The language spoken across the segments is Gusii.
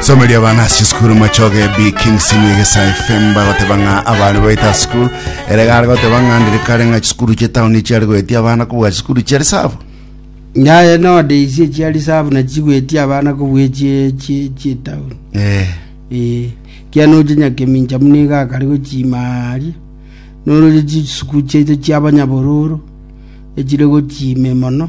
Somo ria bana ase sukuru machoge bi King Simi Egesa FM bagoteba ng'a abana baita sukuru ere gare goteba ng'a ndire kare ng'a chisukuru chia tauni chiare goetia abana kobua chisukuru chia risabu nyaye node isie chia risabu na chigwetie abana kobue chie chie chie town eh eh kia noche nyakemincha muna iga akare gochimaaria noroche chisuku chiaito chia abanyabororo echire gochime mono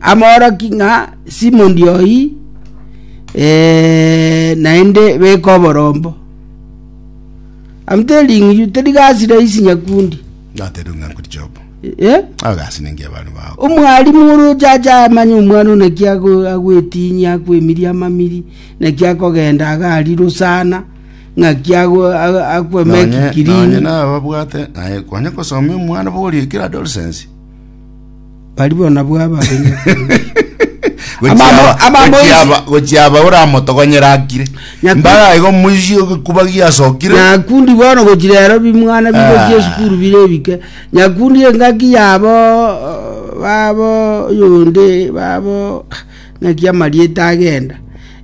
amooroki ng'a Simondi oyio naende beka oborombo. Amotebia ring'iriu teri gasi rahisi nyakundi. Natebe ng'a nkori job. Eh? Agasi ningi abantu bao. Omwalimu oroche ache amanye omwana ona ki ago- agwetinyia akwemiria amamiri naki akogenda agariro sana ng'aki ago- ago- Nonye akwemeki nonye kirini nababwate naye kwanya kosomia omwana bori ekero adolescence. Barabwo nabwo abarenge Amamo- amamo isi- gochiaba oramotogonyere akire Nyaku- mbara igo moisie ogekubagia asokire nyakundi bono gochirero bimwana bigochia Ah. esukuru bire ebike nyakundi engaki yabo uh, babo yonde babo ng'aki amarieta agenda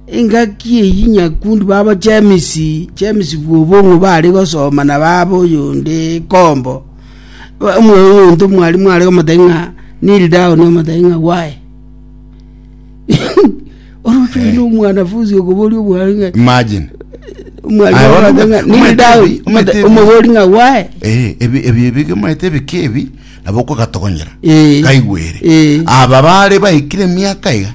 engaki eyi nyakundi babo chemisi chemisi bwobong'u bare gosoma na babo yonde kombo Omonto mwarimu are komotaki ng'a kneel down omotaki ng'a why oroche Eh. oyio omwanafunsi okoboria omwarimu ng'a imagine omwarimu Aye, okoboria ng'a omwete- kneel down omwete- omotaki- omobori ng'a why Eh, ebi ebi ebige maete ebike ebi nabo okogatogonyera Eh. kaigwere Eh. aba bare baikire miaka iga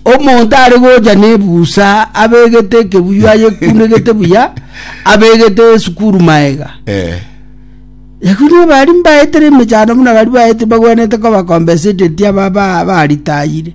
omonto are gocha nebusa abegete ekebuyu ayekunegete buya abegete esukuru maega eh. yakuno bari mbaetere emechando buna bari baete bagwenete koba compensated aba baritayire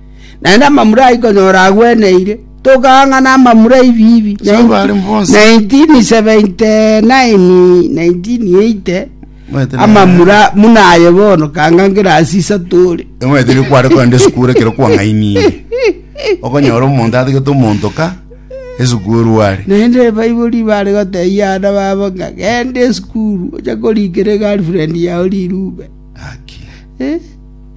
naende amamura ayio konyora agweneire, tokaang'ana amamura 'ebiibi. Saba bare bonsi. 1979, 1980, Omanyete na- amamura muna aye bono kanga ngerasi isato ore. Omanyete ekero kware kogenda esukuru ekero kwang'ainire okonyora omonto atigete omontoka esukuru are naende ebaibori bare gotebia abana babo ng'a genda esukuru oche korikera egirlfriend yao rirube Haki. Eh?